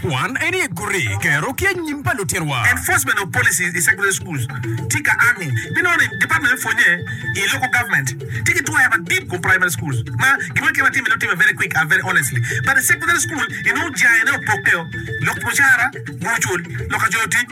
Kwan en ye gure kero ki anyim pa lutino wa. Enforcement of policies in secondary schools tye ka ango me nongo ni department me pwonye i local government tye ki twero madit kom primary schools ma gin moni kit ma timme dong timme very quick and very honestly but i secondary school inongo jangene opokke o lok mucara gucul lok ka coyo tic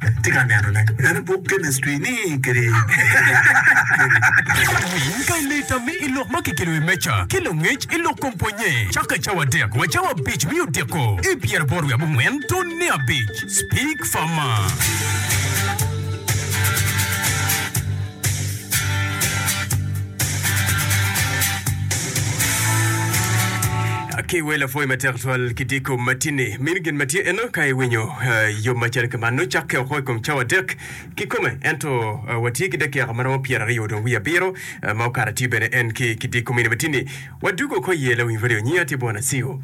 Atye ka neno ne en buk chemistry ni kede Cat winy pa i leta me i lok ma kikelo i wi meja ki langec i lok kom pwonye caka cawa adek wa cawa abic me odiko i pyeraboro wiye abongwen tun ne abic. Speak farmer. Ki wee lapwoyi matek tutwal ki diko matini. Mini gin ma tye eno ka iwinyo yom macalo ki man. Nongo cakke woko i kom cawa adek kikome, ento watye ki dakika ma romo pyera aryo dong wiye abiro ma okato atir bene en ki ki diko mini matini. Wadug woko iye lawiny radio. Nyinga tye Bwana Siu.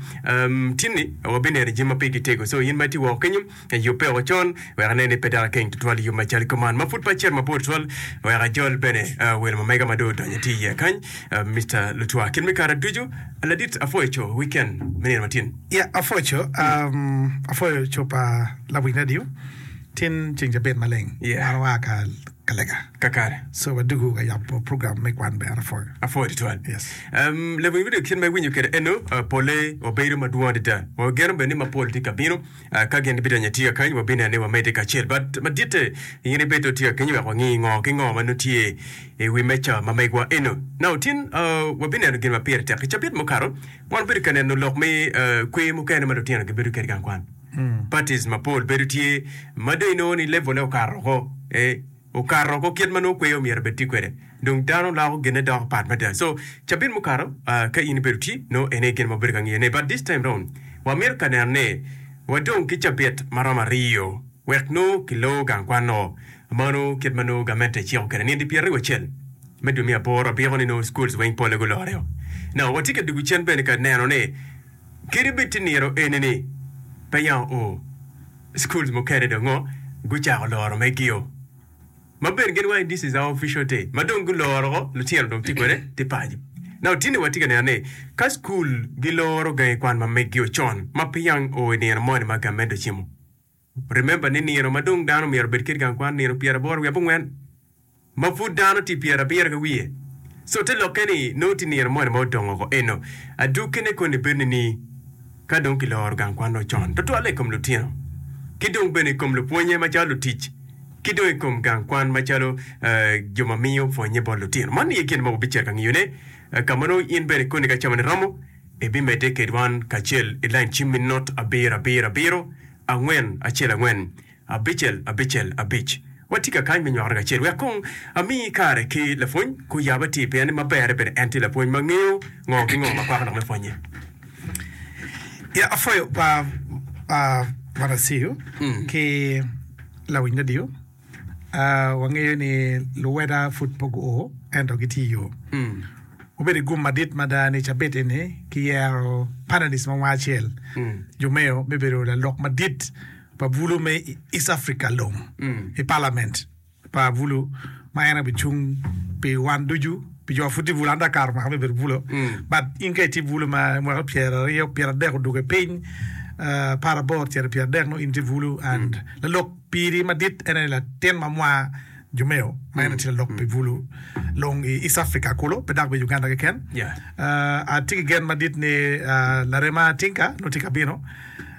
Tinni wabineno jami ma pe gitego, so in ma itye woko kenyo, Yubbe o con wek ane ni pe dok akeng tutwal i yub macalo kiko man ma pud pe acito mabor tutwal wek ajol bene. Wel mo mega ma dong odonyo itye iye kany, Mister Lutwa. Kit me kare ducu, Ladit apwoyo co wiken me nino ma tin. Ya, apwoyo co. Apwoyo co pa lawiny radio. Tin ceng cabit maleng an waa ka Kalega. Kakare. So wadugu ka yabo program me kwan bene. Apwoyo. Apwoyo tutwal. Yes. Um, lawiny radio kit ma iwinyo kwede eno, uh, pole obedo madwong adada. Wageno bene ni mapol tye ka bino. Ka gin gibidonyo i tika kany, wabineno ni wamedde kacel. Bat maditte, in ibed dong tika kenyo wek wangi ngo ki ngo ma nongo tye i wi meja ma megwa eno. Naka otin, wabineno gin ma pire tek. I cabit mukato, wan obedo ka neno lok me kwer mukene ma lutino gibedo kwede i gang kwan. Parties mapol bedo tye ma dong inongo ni level-le okato woko. Okato ko kit ma nongo kweyo omyero obed tye kwede dong dano loko gine doko pat mada so cabit mukato ka in ibedo tye nongo ene gin ma obedo ka ngiyo ne but this time round wa mito ka neno ne wa dong ki cabit ma romo ariyo wek nongo ki loo gang kwan noo mano kit ma nongo gamente eciko kwede nindi pye ariyo acel me dwe me aboro abiko ni nongo schools weng pole gulore o now wa tye ka dugu cen bene ka neno ne kit ibed tye niro eni ni pe yamo oo Schools mukene dong ngo gucako loro me gio ma ben gin wangi this is our official day ma dong guloro ngo lutino dong tye kwede tye paco. Now tini watye ka neno ni ka school giloro gangi kwan ma me gio con ma pe yang oo i nino moni ma gamen dong cimo remember ni nino ma dong dano myero obed kit gang kwan nino pyeraboro wiye abongwen. ma pud dano tye pyerabiro ki wiye. So te lokke ni nongo tye nino moni ma odong woko eno, adukkine koni bedo nining? Ka dong kiloro gang kwan nongo con, tutwalle i kom lutino, ki dong bene i kom lupwonnye macalo lutic, ki dong i kom gang kwan macalo jo ma miyo pwonnye bot lutino. Man aye gin ma wubicito ka ngiyone. Ka ma nongo in bene koni ka camone romo, ibimedde kedwan kacel ilany cimmi not abiro abiro abiro angwen acel angwen. Abicel Abicel Abic. Watye ka kany me nywakone kacel wek kong ami kare ki lapwony ku yab atir pien ma berre bedo en tye lapwony ma ngeyo ngo ki ngo ma kwako dok me pwonye. Ya apwoyo par pa Brother Siu ki lawiny radio. Wangeyo ni luweda pud pe guo ento gitye iyo. Obedo i gum madit mada ni cabit eni kiyero panelist ma wanga acel, Jumeo me bedo lalok madit. pa bulu me East Africa Long i palament pa bulu ma en bi cung pi wan ducu pi jo pud tye bulu an dong akaro mwaka me bedo bulu but in ka itye bulu ma mwaka pyera aryo pyera adek oduge piny uh, apar aboro cito pyera adek no in tye bulu and lalok piri madit en aye latin ma mwa Jumeo ma en tye lalok pi bulu long i East Africa kulu pe dok bene Uganda keken Yeah. uh, atye ki gen madit ni uh, larema Tinka nongo tye ka bino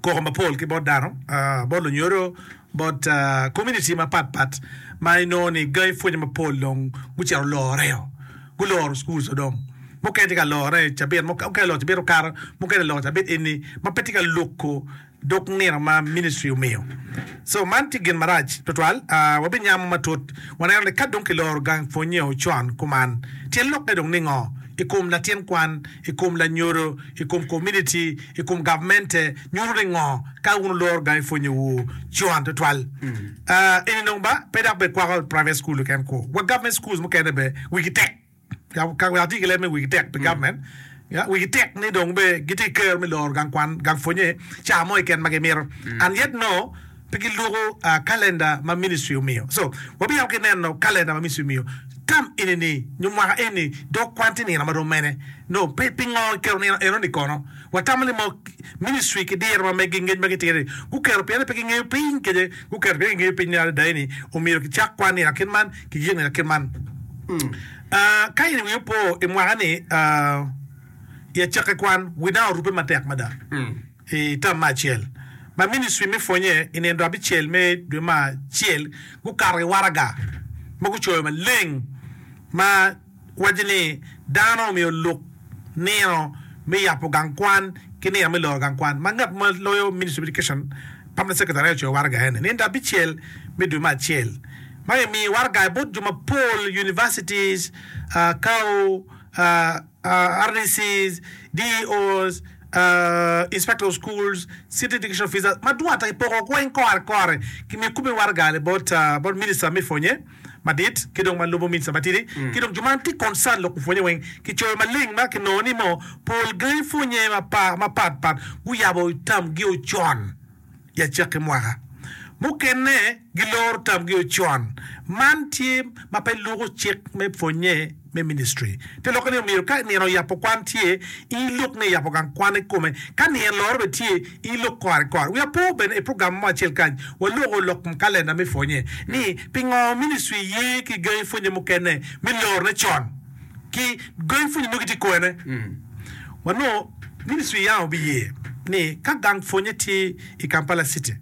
koko mapol ki bot dano, bot lunyodo, bot komuniti mapat pat ma inongo ni gangi pwonye mapol dong gucito guloreo, guloro cukul ca dong. Mukene tye ka lorone i cabit, mukene oloro cabit okato, mukene oloro cabit eni ma pe tye ka loko dog nino ma ministri omiyo. Co man tye gin marac tutwal. Wabinyamo matut waneno ni ka dong kiloro gang pwonnyeo con kuman, tyen lokke dong ningo i kom latin kwan, i kom lanyodo, i kom komuniti? i kom gavmente nyuto ni ngo ka wun wuloro gangi pwonye wu con tutwal eni dong ba pe dok be kwako private school keken kwo wa government schools mukene be wigi tek ka wek ati ki leb me wigi tek pi government ya wigi tek ni dong be giti kero me loro gang kwan gang pwonye ca mo keken ma gimito and yet no Pe gilwoko kalenda ma ministri omiyo. So, wabiyako ki neno kalenda ma ministri omiyo. Tam eni-ni nyo mwaka eni dong kwan tye nino ma rom mene? Nongo pingo kiketo nino eno-ni kono? Watamo ni mo ministri ki diro ma megi ngec ma gitire-ni guketo pien ni pe gingeyo piny kece. Guketo pien gingeyo piny ni adada eni omyero kicak kwan nino akit man, kiyik nino akit man. Ka in winyi opo i mwaka-ni, i acakki kwan, wi dang orubbe matek mada. I tam me acel ma ministri me pwonye i nino abicel me dwe me acel gukato ki waraga ma gucoyo maleng ma waco ni Dano Omiyo Lok Nino me Yabo Gang Kwan ki Nino me Loro Gang Kwan, ma ngat ma loyo Ministry of Education Permanent Secretary aye ocoyo waraga eni. Nino abicel me dwe me acel ma kimiyo waraga bot jo mapol, universities, kao. RDCs, DEOs, Inspector of Schools, City Education Officers, ma dwong ata kipoko kweny kore kore ki miyo kome waraga ni bot bot Minister me pwonye madit ki dong ma lubo Minister matidi ki dong jo ma tye concern lok pwonye weng ki coyo maleng ma kinongo ni mo pol gangi pwonye mapat pat guyabo tam gi ocon. i acakki mwaka. Mukene giloro tamgi o con. Man tye ma pe luko cik me pwonnye me ministri. Te lokke ni omyero ka nino yabo kwan tye, in ilok ni iyabo gang kwan ikome. Ka nino loro bene tye, in ilok kore kore. Wi apo bene i program mo acel kany waloko lok m kalenda me pwonnye ni pingo ministri ye ki gangi pwonnye mukene me lorone con. ki gangi pwonye nongo gitye kwene, wanongo ministry yam obiye ni ka gang pwonye tye i Kampala city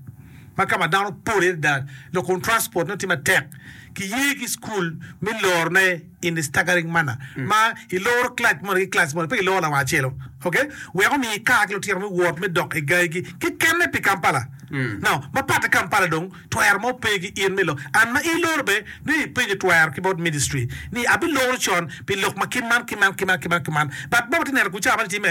ma ka ma dano pol iye adada dok kun transport nongo tye matek, kiye ki school me loro ne in the staggering manner ma iloro class moni ki class moni pe iloro lawang acel-lo ok wek omi ikar ki lutino me wot me dok i gangi gi kekene pi Kampala now ma patte Kampala dong. Twero mo pe gi in me lok. And ma iloro be ni ipenyo twero ki bot ministry ni abi loro con pi lok ma kit man ki man ki man ki man ki man but bot watye neno gucar man time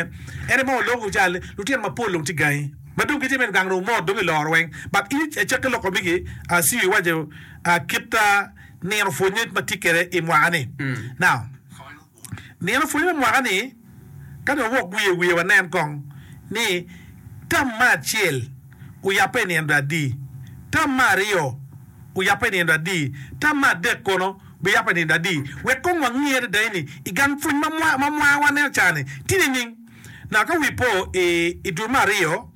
ene ma waloko gucar ni lutino ma pol dong tye gangi ma dong gitye me gang dong omot dong iloro weng but in icake loko migi a siyo iwaco a kit a nino pwonye ma tye kede imwaka ni now. Nino pwony me mwaka ni ka dong wawok wiye wiye wanen kong ni tam ma acel oyabbe i nino adi, tam ma aryo oyabbe i nino adi, tam ma adek kono biyabbe i nino adi wek kong wange adada ni i gang pwony ma mwaka ma waneno cani tye nining? Naka wi po i dul me aryo.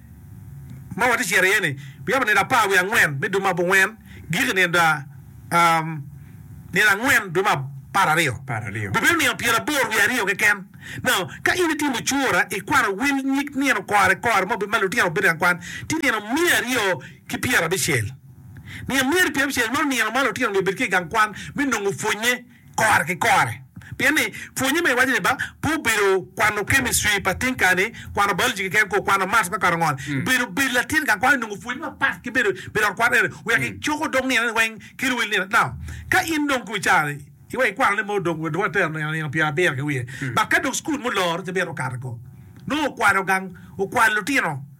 ma watye cito iye-ni bi yabo nino apar wiye angwen me dwe me abongwen, giko nino angwen dwe me apar aryo. Bibedo nino pyera aboro wiye aryo keken. Ka in itimo cura, ikwano wel nyig nino kore kore ma obedo ma lutino obedo ka kwan, tye nino miya aryo ki pyera abicel. Nino miya aryo ki pyera abicel meno nino ma lutino myero obed ki i gang kwan me nongo pwonye. kore ki kore. Pien ni, pwonye ma iwaco ni ba pe obedo kwano kemictri pa tinka-ni, kwano biology keken kor kwano math me kwano ngol, bedo bed latin gang kwan onongo pwonyi mapat ki bedo bed i ot kwan eni wek icoko dog nino ni weng ki luwil nino. Now, ka in dong kong icaroni iweko ikwanone mo dong dong atero nino nino pyer abiro ki wiye, but ka dong cukul muloro ci myero okato ko nongo okwalo gang okwalo lutino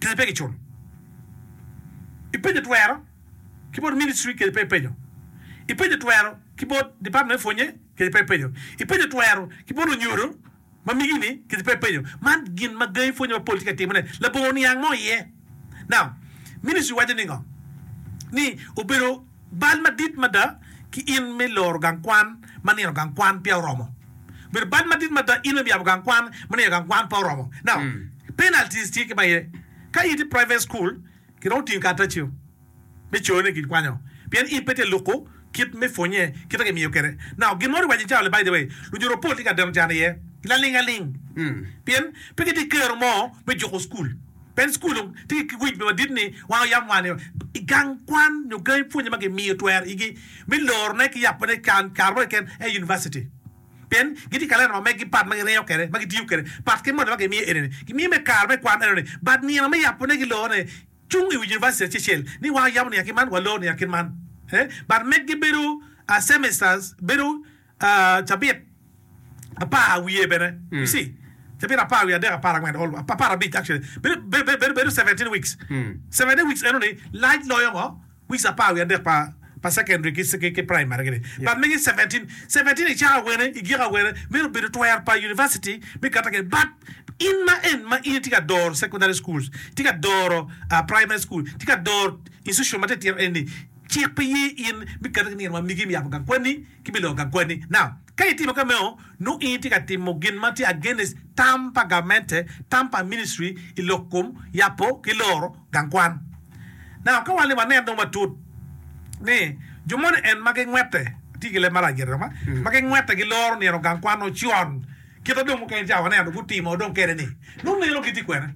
Kadi pe giculo i penyo twero ki bot ministry kadi pe i penyo i penyo twero ki bot department me pwonye kadi pe i penyo i penyo twero ki bot onyodo ma migi ni kadi pe i penyo man gin ma gangi pwonye mapol tye ka timo ne labongo niang mo iye now ministry waco ningo ni obedo Bal madit mada ki in me loro gang kwan ma nino gang kwan peya oromo. Obedo bal madit mada in me yabo gang kwan ma nino gang kwan peya oromo. Now, penalties tye kit ma aye, ka itye private school, ki romo tingo karataciu me co ni kikwanyo pien in pe tye ka luku kit me pwonye kit ma kimiyo kwede. Now, gin mo riwac ni cawa-ni by the way, lunyuto pol tye ka deno can iye laling aling pien pe kitye ki kero mo me juko school. Bed Cukul tye ki wic madit ni wan oyam wa ni gang kwan nyo gangi pwonye ma gimiyo twer igi me lorone ki yabone can kare mo keken aye Univaciti. Pien gitye kalenda ma megi pat ma giringo kwede ma gitiyo kwede. Pat ki moni ma gimiyo eni ni, gimiyo me kare me kwan eno ni bad nino me yabone ki lorone cung i wi Univaciti acecel ni wan oyamo niang ki man wa lor niang ki man. Bad megi bedo a semesters bedo. Cabit apar wiye bene, you see, cabit apar wiye adek, apar angwen, all, apar abic actually, bedo, bedo, bedo seventeen weeks. Seventeen weeks eno ni lac loyo ngo weeks apar wiye adek pa pa secondary ki ki ki primary gini. But mege i seventeen, seventeen i cako awene, i giko awene myero bedo twer pa university me kata kene. But in ma en ma in itye ka doro secondary schools, itye ka doro ah primary school, itye ka doro institution matitino eni ni cik pe ye in me kata ki nino ma migi myero yabo gang kwanni. kibiloko agwani na. Ka itimo ka meno, nongo in itye ka timo gin ma tye against tam pa gamente, tam pa ministry i lok kom yabo ki loro gang kwan. Now ka wan ni wanen dong matut ni jo moni en ma gingwete, atye ki leb marac gire dong ma, ma gingwete giloro nino gang kwan ocon kite dong mukene ca waneno dong gutimo dong kene ni, nongo nino gitye kwene?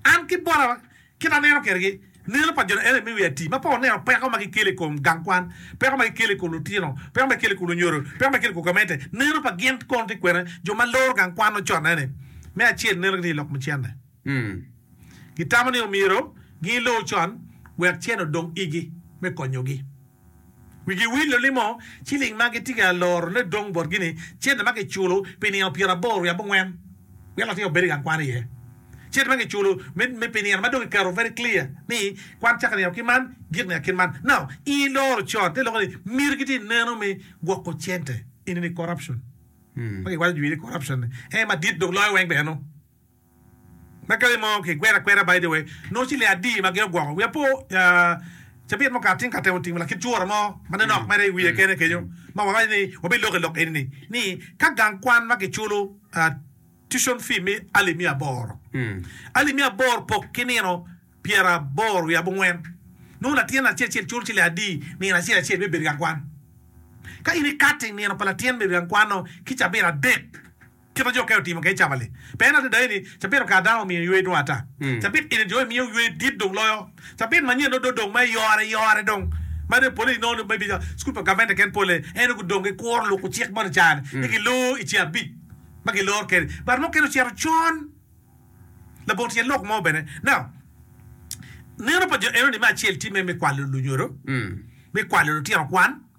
An ki bota. Kit ma aneno kwedegi, neno pa jo ni ene miyo ati mapol neno peko ma gikelo i kom gang kwan, peko ma gikelo i kom lutino, peko ma gikelo i kom lunyodo, peko ma gikelo i kom gamente. Neno pa gin kono tye kwene jo ma loro gang kwan ocone ni. Me acel, neno gitye i lok me cente. Gitamo ni omyero gin lo con wek cen odong igi me konyogi. Wigi wil lulimo ciling ma gitye ka lorone dong botgi ni cente ma kiculo pi nino pyeraboro wiye abongwen wek latin obed i gang kwan iye. Cente ma kiculo me pi nino ma dong kiketo very clear ni kwan cako nino ki man gik nino kin man. Now in iloro con ite loko ni myero gitye ka neno me gwoko cente. Enini corruption ma kiwaco jwi ni corruption ni en madit dok loyo weng bene nongo. Ma kare mo kikwero akwera by the way nongo ci le adi ma giogwoko wiya po cabit mukati ka temo timo lakit cura mo ma nonok mere iwiye kene kenyo ma wawaco ni wabelok i lok eni ni ka gang kwan ma kiculo tuition fee me alip me aboro alip me aboro pok ki nino pyera aboro wiye abongwen nongo latin acel acel culo ci le adi nino acel acel me bedo i gang kwan ka in ikati nino pa latin bedo i gang kwan-no ki cabit adek Kit ma jo okene otimo kede cabali pe en adada eni, cabit okato dano omiyo ywe dwong ata. Cabit eni jo imiyo ywe dit dong loyo. Cabit manyen nongo dong dong ma iyore iyore dong ma nongo pole inongo nongo maybe cukul pa gavment keken pole en nongo gudong gikuro luko cik mono i caro ni gilor i ce abic ma gilor kede but mukene ocito con labongo tyen lok mo bene now neno pa jo enoni me acel tye me kwalo lunyodo me kwalo lutino kwan.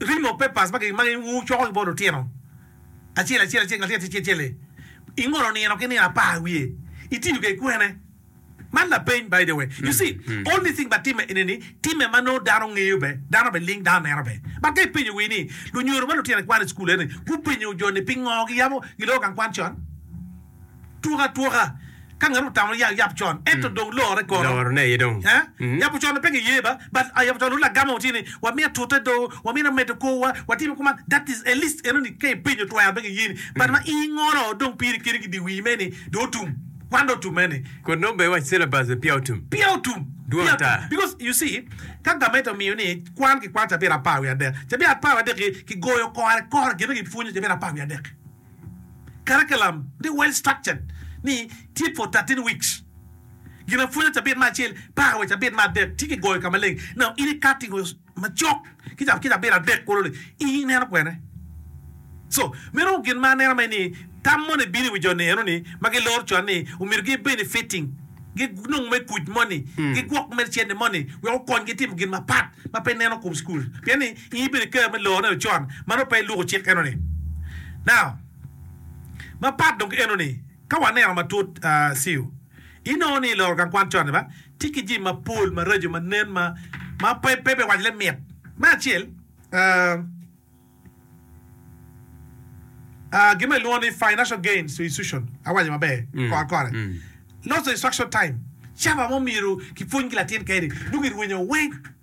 Ring of papers ma wucoko ki bot lutino acel acel acel latin acel acel-li i ngolo nino ki nino apar wiye itiyo kwede kwene? Man lapeny by the way. You see, only thing ba timme ene ni timme ma nongo dano ngeyo be, dano be ling dano neno be. But ka ipenyo wi ni lunyodo ma lutino gikwano i cukul eni gupenyo jo ni pingo giyabo giloko gang kwan con? Tuk atuka ka ngat otamo yap con ento dong lore kono. Loro ne aye dong. Eeh yabo con pe ki yeba but yabo con nongo lagama watye ni wamiyo atute do wamito amedo kor wa watimo kuman that is at least enoni ka ipenyo twero pe ki yeni but ma i ngolo dong pire kene ki di wii me ni do otum kwan do otum eni. Kodi nongo be iwaco syllabus be peya otum. Peya otum. Dwong Peya ata. otum because you see ka gamente omiyo ni kwan ki kwano cabiet apar wiye adek cabiet apar wiye adek ki goyo kore kore gin ma ki pwonyo cabiet apar wiye adek. Curriculum ni well structured ni tye for thirteen weeks ginapwony me cabit ma acel paka wa i cabit me adek tye ki goyo ka maleng now in i cutting o macok ki cabit adek kulu ni in i neno kwene so meno gin ma aneno ni tam moni bino i wi jo ni eno ni ma gi loro con ni omyero gi benefiting gi nong me kuc moni gi gwok me cene moni wek okony gi timo gin mapat ma pe neno kom school pien ni I bedo kare me loo neno con ma nongo pe iluko cik enoni now ma pat dong ki enoni ka waneno matut siu inongo ni iloro gang kwan con ni ba tye ki jami ma pol maraco ma nen ma ma pe pe me waco le mit me acel aah aah gin ma ilwongo ni financial gains to institution awaco maber kor kore loss of instruction time caba mo myero ki pwony ki latin kene dong irwenyo weng.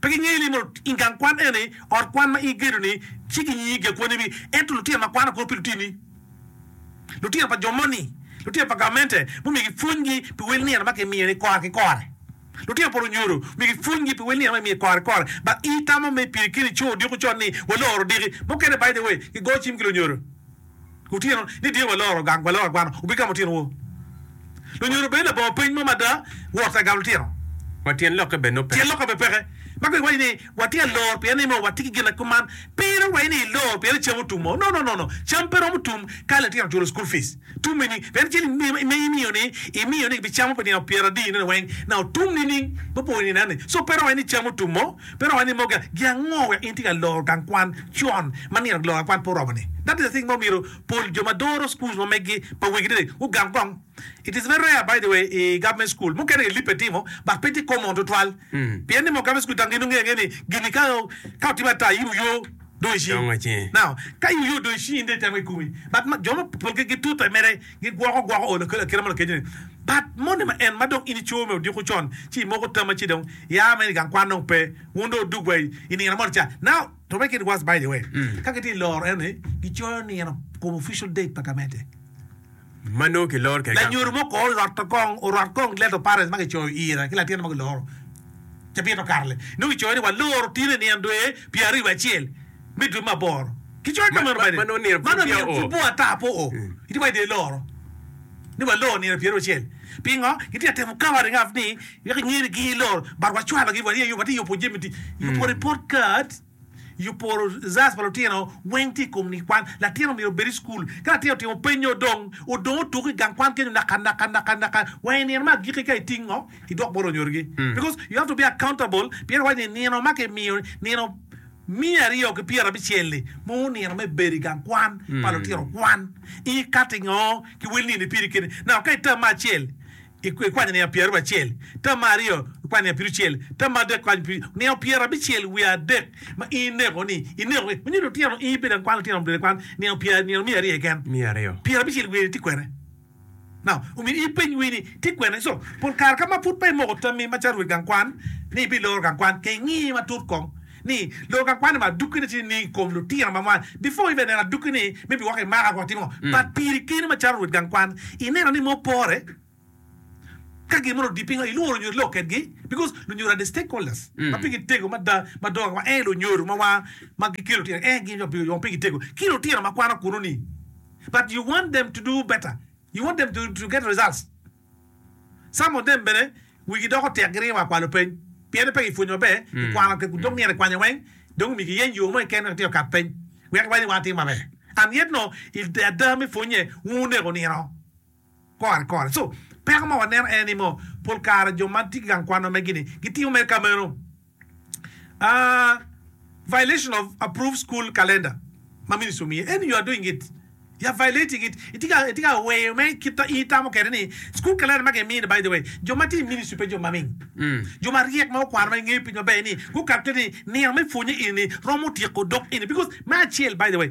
Pe gingeyo ni mono i gang kwan eni, ot kwan ma igedo-ni, ci ginyingi gi akwonnewi, ento lutino ma kwano kwo pi lutini, lutino pa jo moni, lutino pa gamente mumigi pwonygi pi wel nino ma kimiyo-ni kora ki kore. Lutino pa lunyodo migi pwonygi pi wel nino ma kimiyo kora ki kore. Ba itamo me pire keni co odiko con ni, Waloro odiki. Mukene, by the way, gigoyo cim ki lunyodo. Otyeno ni dyeyo waloro gang waloro agwana obigamo otyeno wor. Lunyodo obed labongo peny mo mada wot agal otyeno. Ma tyen lokke bene ope. Tyen lokke bene peke. Ma kong iwaco ni watye ka lor pien ni mo watye ki gin kuman. Pire waco ni ilor pien ni cam otum o. No no no no. Cam pe romo tum ka litino oculo school fees. Tum ini pien cel ma imiyo ni imiyo ni gibicamo pi nino pyera adi nene weng na otum nining? Mupore nino eni. So pe romo waco ni cam otum o. Pe romo ni moga gi ango wek in tye ka loro gang kwan con ma nino ki loro gang kwan pe oromo ni. That is a thing ma omyero pol jo ma doro schools ma megi pa wegi dede gugam kong. It is very rare by the way i government school mukene i lipe timo but pe tye common tutwal pien ni moga government school dang gin ongeyo angeya ni gini ka ka otime ata in wuyo dong i cingi. Now ka in wuyo dong i cingi in dong itemo kikomi but ma jo ma polgi gitutte mere. Gigwoko gwoko o lakeli akela mo lakeci ni, But moni ma en, ma dong in ico me odiko con, ci imoko tama ci dong ia ma in i gang kwan dong pe, wun dong wudug wa i nino moni ca. Now, to make it worse by the way, ka gitye loro en ni, gicoyo nino kom official date pa gamente. Ma nongo kiloro kede gang Lanyodo kwan. mo ko oloto kong, orot kong letter of parents ma gicoyo ira ki latin mo giloro cabit makato-le. Nongo gicoyo ni waloro tine nino dwe pyeraryo wiye acel. me dwe me aboro. Ki coyo ka meno bene, man omyero pudwa ata po i dye dye loro ni walor nino pyeraucel. Pingo? Kitye ka temo covering up ni wek enyer ni giny lor but wacwalogi, watye ka yubo jami, yubo report card, yubo results pa lutino weng tye i kom ni kwan. Latin omyero obed i cukul, ka latin otimo peny nyo odong, odong otuko i gang kwan kenyo naka naka naka naka wa i nino ma agiki ka itingo idwok bot onyorgi because you have to be accountable pien iwaco ni nino ma kimiyo nino. Miya aryo ki pyera abicel-li ma onino me bedo i gang kwan pa lutino kwan, ikati ngo ki wel nini piri kene? Naka ka i tam ma acel ikwanyo niang pyera aryo acel, tam ma aryo ikwanyo niang pirucel, tam ma adek ikwanyo piru niang pyera abicel wiye adek ma in ineko ni ineko gi manyo lutino in ibedo i gang kwan lutino omdode kwan niang pyera nino miya aryo keken, pyera abicel wiye ni tye kwene? Omyero ipeny wer ni, 'Tic kwena nicuc? Pol kare ka ma pud peya imoko tammi macalo rwed gang kwan ni ibiloro gang kwan, kong ingi matut kong ni loro gang kwan-ni ma adukki ne tye nining i kom lutino ma mwany. Before ibe neno adukki ni me biwoko i maka kong itimo ngo? But piri keni macalo rwed gang kwan, ineno ni mo pore ka gin mono odi pingo, ilworo lunyodo ilok kedgi because lunyodo are the stakeholders ma pigi tego mada madongo wa ee lunyodo ma wa ma gikelo lutino ee gin jo ma pigi tego ki lutino ma kwano kunu ni. but you want them to do better, you want them to get results, some of them bene wigi doko tek giringo wa kwalo peny piene pe gipwonyo maber i kwano kek dong myero kikwanya weng dong myero kiyeny yo mo keken wek atyeko kat peny wek waydi wang atim maber and yet no i ada me pwonye wun wuneko nino. kore kore. So, peko ma waneno en ni mo pol kare jo ma tye ki gang kwan wa megi ni gitimo mere ka meno. Aa, violation of approved school calendar ma ministry omiye en you are doing it, you are violating it, itye ka itye ka weyo me kit ma in itamo kede ni school calendar ma gimiyo ni by the way jo ma tye i ministry pe jo ma ming, jo ma ryek ma okwano ma gingeyo piny maber ni gukato kede ni nino me pwonye eni ni romo tyeko dok eni because me acel by the way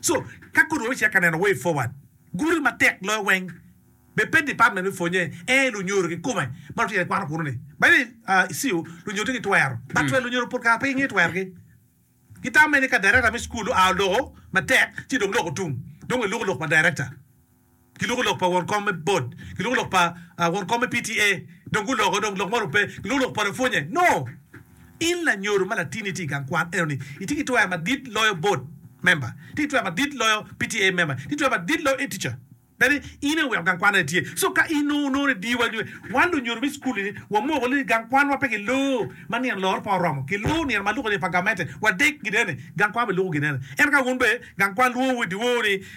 So, ka kodi wacito ka neno way forward, gudo matek loyo weng be pe department me pwonye ee lunyodo kikome ma lutino gikwano kunu ni. By the way, i CU lunyodo tye ki twero, but twero lunyodo pol kare pe gingeyo twergi. Gitame ni ka director me school oa oloko matek ci dong lok otum, dong eloko lok pa director. ki loko lok pa won kom me bot, ki loko lok pa ah, won kom me PTA, dong guloko dong lok moni ope, ki loko lok pa lapwonye. No! In lanyodo ma latinni itye i gang kwan enoni, itye ki twera madit loyo bot member, itye ki twera madit loyo PTA member, itye ki twera madit loyo e-teacher. Bene in aye oweko gang kwan ene tye. So ka in nongo onongo ni diwa nyo wan lunyodo me cukul-li ni wamoko ni gang kwanwa pe kiloo ma nino loro pe oromo, kiloo nino ma luko ni pa gamente, wadek gin enoni, gang kwan bene luko gin enoni. Ento ka wun bene gang kwan lwowu i dyewor ni,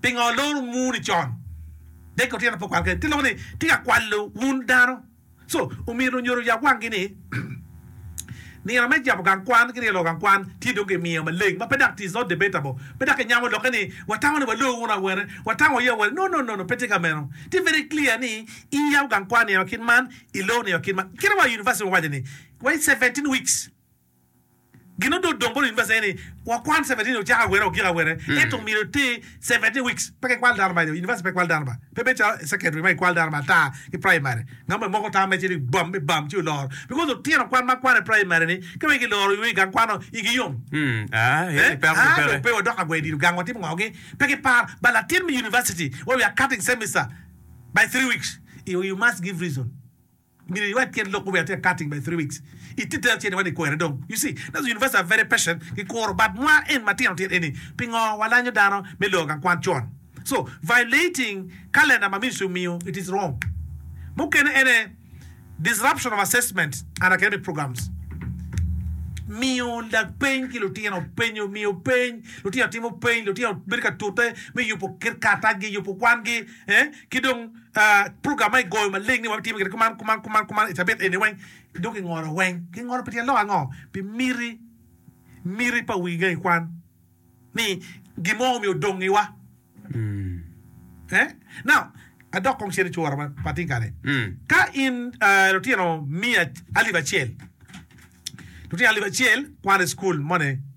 Pingo loro muni con? Dek otyeno pe okwal kene, ti loko ni ti ka kwalo wun dano. Co omyero onyoro oyab wangi ni nino me jabo gang kwan ki ryelo gang kwan tye dong ki miyo maleng ma pe dok tis not debatable. Pe dok ki nyamo lokke ni watamo ni walor wunu awene, watamo aye awene. No no no no, pe tye ka meno. Tye very clear ni in iyabo gang kwan nino kit man, ilor nino kit man. Kit ma wa University wawaco ni, wa i seventeen weeks. Gin odot dong bot univaciti aye ni wakwan seventeen ocako awere ogiko awere ento myero iti seventeen weeks pe ka ikwalo dano ba i univaciti pe ikwalo dano ba pe bedo calo i secondary ma ikwalo dano ma ata ki primary ngat mo imoko tam mere ci dong ibam ibam ci oloro because lutino kwan ma kwan i primary ni ka wek giloro i gang kwano igi yom ee dong pe wadok agwe dilo gang watimo ngo gi pe ki par but latin me univaciti where we are cutting semester by three weeks you must give reason. Myero iwek kit lok gubed atir cutting by three weeks i tite acel iwani kwere dong you see that's the university are very patient ki kuro but nwa en matino tino eni pingo walanyo dano me lor gang kwan con so violating calendar ma ministry omiyo it is wrong mukene ene disruption of assessment and academic programs miyo lapeny ki lutino penyo miyo peny lutino timo peny lutino bedo ka tute me yubo kit karatac gi yubo kwan gi eh ki dong Program ma igoyo maleng ni wabitime gire kuman, kuman, kuman, kuman i cabit eni weng, dong kingolo weng. Kingolo pi tyen lok ango? Pi miti, miti pa wi gangi kwan, ni gin mo omyero odongiwa. Eh? Now, adok kong cen i cura ma pa ting kare. Ka in ah, lutino miya alip acel, lutino alip acel kwano i cukul moni,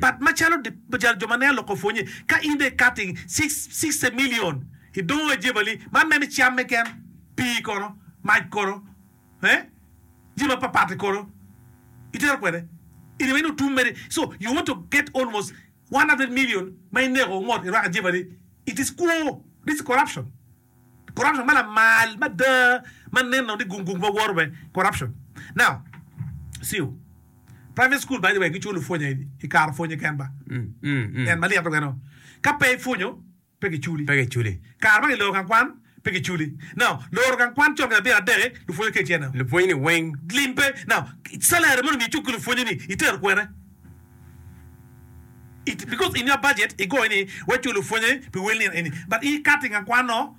pat macalo jo ma neno lok opwonye. Ka in dong ikato i cice milion i doo ajebali, man mene camme ken, pii kono, mac kono, eh, jami mapatpat-ti kono itero kwede in aye ni otum mere. So, you want to get almost one hundred million ma ineko ngot irwako ajebali, it is kwo, this is corruption. Corruption ma lamal mada ma nen nongo ni gung gung pe woro be corruption now siu private school by the way giculo pwonya i kare pwonye ken ba en ma lyeto kene ka pe ipwonyo pe giculi pe giculi kare ma giloro gang kwan pe giculi now loro gang kwan con ki labira adeki lupwonye kece now lupwonye ni weng lim pe now salary mondo mi icuk ki lupwonye ni itero kwene It because in your budget igoyo ni we culu pwonye pi wel nino eni but i cutting a kwano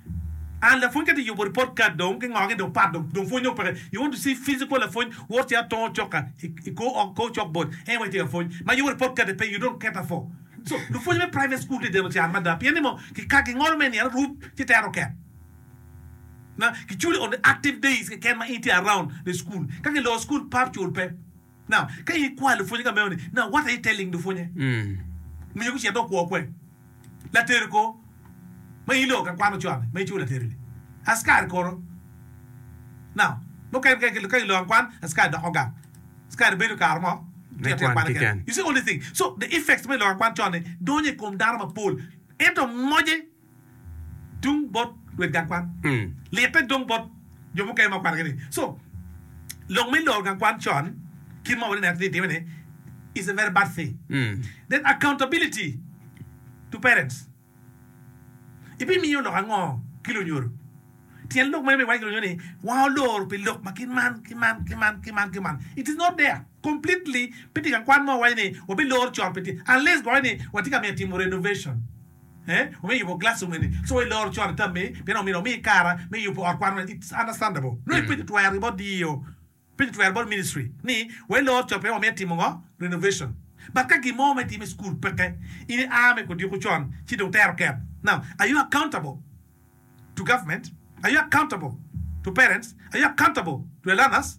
and lapwony ka ti yubo report card dong ki ngoge dong pat dong pwony dong peke you want to see physical lapwony wot ci atongo cok ka i kor ot kor cok board en wai ti ka pwony ma yubo report card pe you don't cater for so lupwonye me private school ti deno can mada pien ni mo ki ka gingolo me nino rub ci tere oket na ki culi on the active days keken ma in ti around the school ka ki lor school pap cul pe. Ka in ikwai lupwonye ka meno-ni, wot aye i te ling lupwonye, miyo gucit dong kwo kwer. Laterri kor ma in iloko ka kwan ocoa-ni, ma iculo laterri-ni, askari kor-ro? Mukene ka kiloko kwan, askari doko gang, askari bedo kare mo tito atita kwan keken. You see all these things. So the effects me loko kwan con-ni donyo i kom dano mapol, ento moje. tung bot luet gang kwan. Litte dong bot jo mukene ma okwanogi ni, so lok me loro gang kwan con kit ma wati neno ni time ni is a very bad thing. Then accountability to parents. Ibimiyo lok ango ki lunyodo? Tyen lok meno ma iwaco ki lunyodo ni wang olor pi lok ma kit man ki man ki man ki man ki man. It is not there completely. Pe tye gang kwan mo ma waco ni wabilor con pe tye unless gwok ni watye ka mito timo renovation. me yubo glassroom eni so ilor con i tammi pien omyero omi kare me yubo ot kwan meno. It's understandable. Nongo ipenyo twergi bot DEO, ipenyo twergi bot ministry ni wa ilor con pien wamito etimo ngo? Renovation. But ka gin mo ma itimo i school peke, in i a me kodiko con ci dong itero ket. Now, are you accountable to government? Are you accountable to parents? Are you accountable to the learners?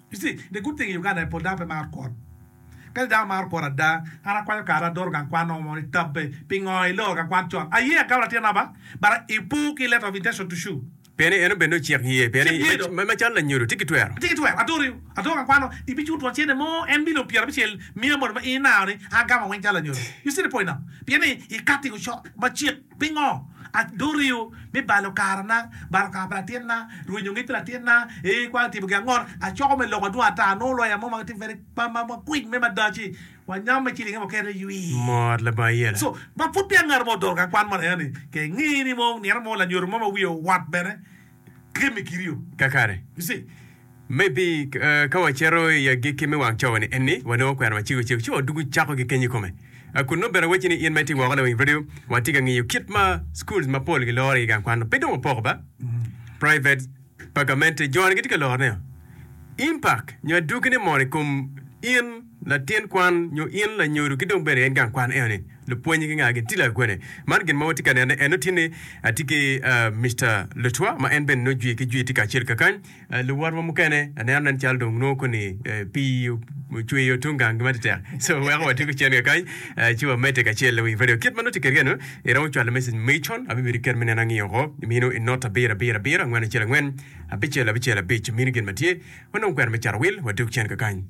Dye guteng i Uganda aye pol dano pe maro kwot. Kadi dano maro kwot ada, an akwanyo kare adoro gang kwan nongo mono itabbe. Pingo iloro gang kwan con? Aye agam latin aba, but i po ki letter of intention to sue. Pien ni en obed ni ocik ye. Pien Cik ye do. ni macalo lanyodo tye ki twero. Tye ki twero. Adori, adoro gang kwan nongo ibiculo twon cente mo en milion pyera abicel miya moni ma in inaro ni an agamo weng calo lanyodo. You see the point now? Pien ni ikati i ocok ma cik. Pingo aduriu me balo karana, balo kare pa latinna, rwenyo ngec pi latinna, ee kwan timo gin ango? Acoko me loko adwong ata, anongo loya mo ma tye very quick me madaci, wa nyam me cilinge mukene ywii. Mot labongo iyela. So, ma pud peya ngato mo odoro ka kwan mono eno ni, ke ngi ni mo nino mo lanyodo mo ma wiye owot bene, Kakare, maybe, ka wacito i agikki me wang cawa-ni eni, wanongo kwena macego cego ci wadwogo cako gikenyo i kome. A Kun nongo bene awacci ni in ma itye woko lawiny redio, watye ka ngiyo kit ma schools mapol giloro i gang kwan-nu. Pe dong wapoko ba, private, pa gamente, jo-ni gitye ka lorone-o. Impact nyo adwogine mono i kom in? Latin kwan nyo in lanyodo ki dong bene en gang kwan eno ni lupwonye gi nga gin tye lagwene. Man gin ma watye ka nene eno tye ni atye ki Mister Lutwa ma en bene nongo jwi ki jwi tye kacel kakany. Luwotwa mukene aneno nen calo dong nongo koni pii ocweyo tung gang gi matetek so weko watye gucen kakany ci wamedde kacel i wii radio. Kit ma nongo tye kede eno iromo cwalo message magi con abibedo iket me neno angiyo ko minu i not abiro abiro abiro angwen acel angwen abicel abicel abic minu gin ma tye wanongo kwena me carawil wadog cen kakany.